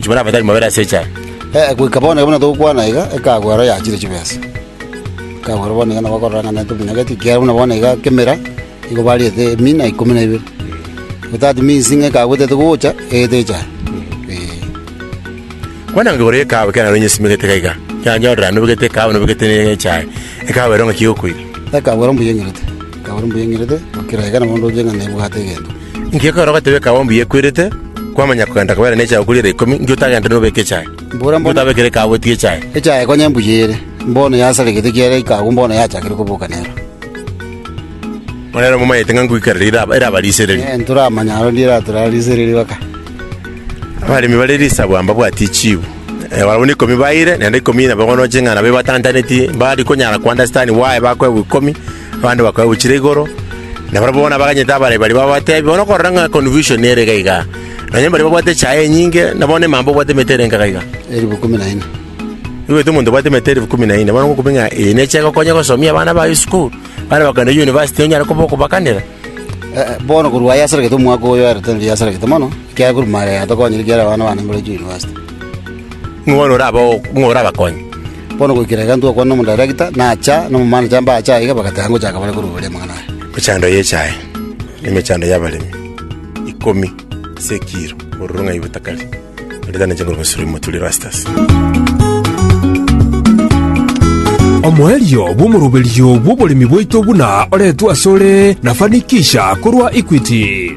Inchuo na abatari mobere ase echela. Ee, goika bono iga buna togokwana iga, ekagwa aro yachire chibesa. Ekagwa aro bono iga nabo bakorora ng'a nere tominyagetwe, ekiagera buna bono iga kemera nigo bariete emina ikomi na ibere. Igo that means ng'a ekagwa etaete gocha, egete echara. Ee. Kwana ngigoro y'ekaawa ekero narenge nsimegete iga iga, ekero nanyorire nobegete ekaawa nobegete ne echae, ekaawa ero ng'aki egokoira. Ekagwa ero mbuya eng'irete, ekagwa ero mbuya eng'irete, gokira iga nabo ndoche ng'a nebwate egento. Inki ekero ogateba ekaabombe eye ekwerete, kwamanya kogenda kobera nechae okoria ere ikomi, inki otagende nobeke echae? Mbora Inki mbono otabekire ekaabo etige echae? echae konya embuya ere, mbono yasara egete kiaera ikagu mbono yachakire koboka nero. Onere momanyete ng'a ngoikarera ira- eraba risereri. Eh, ntoramanya aro ndiera torara risereri baka. Abaremi bare risabu amba bwati chiu. Eh, barabwo neikomi baire, naende ikomi nabo bono ching'ana babe batantaneti, mbari konyara kwanda sitani waye bakoegwa ikomi, Abande bakoegwa chire igoro, na barabwo bono abaganyete abarabe baria babateebia, bono okorora ng'a confusion ere iga iga, nonya mbaria babwate echaye enyinge, na bono emambe obwate emete ere enkaga iga. Elifu ikomi na ine. Oigwete omonto obwate emete elifu ikomi na ine, bono ngokobia ng'a eye necha egokonya gosomia abana baye esukuru, bande bakogenda university onyare koba okobakanera. Eh, bono korwa aye asarekete omwaka oyo ere tari asarekete mono, ekiagera korwa mare yatokonyire ekiagera abana bane mbaroche university. Ng'o bono orabe ng'o orabakonye? Bono goikera iga ntogokwana nomodairagita, nacha, na omomanacha mbache aiga, bagateba ngochaka bare koruboria amang'ana aya. Emechando y'echae, na emechando y'abaremi, ikomi ase ekiiro, ororo ng'ai botakari, bareta ne chinguru Misiri omoturi Erastus. Omoerio bw'omoroberio bw'oboremi bwaito buna oretwe asore na Fanikisha korwa Equity.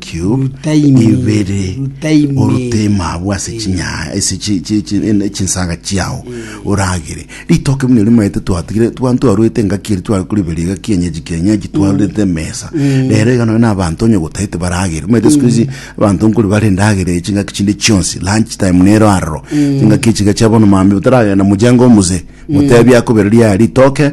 Cube ibere orute ime abwo ase chinyanya ase chi- chi- chi- ene- chinsaga chiao oragere ritoke buna erio maete twatigire twa- ntwarwete engaki eri tware koriberia egaki enyeji kienyeji twarorete emesa rero iga nonye na abanto onye gotaete baragere omanyete siku hizi abanto nkori bare endagera eye chingaki chinde chionsi lunch time nero aroro chingaki echi iga chia bono mambia otaragenda mojengo omosee motebi akobera ria ritoke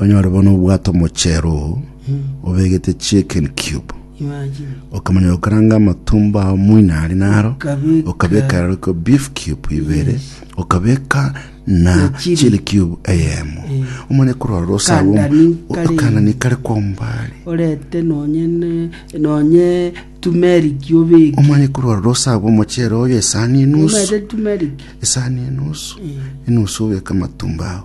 Onyore bono obwate omochero oo obegete chicken cube Imagine. okamanya gokaranga amatumbo ao moina ari naro Okabeka- okabeka rero ko beef cube ibere okabeka na Na chili. chili cube eyemo omanye korora rosago Kandani kare. okanani kare kwa ombare orete nonye ne- nonye tumeriki obeke omanye korora rosago omochere oyo esani enusu omete tumeriki esani enusu enusu obeka amatumbo ao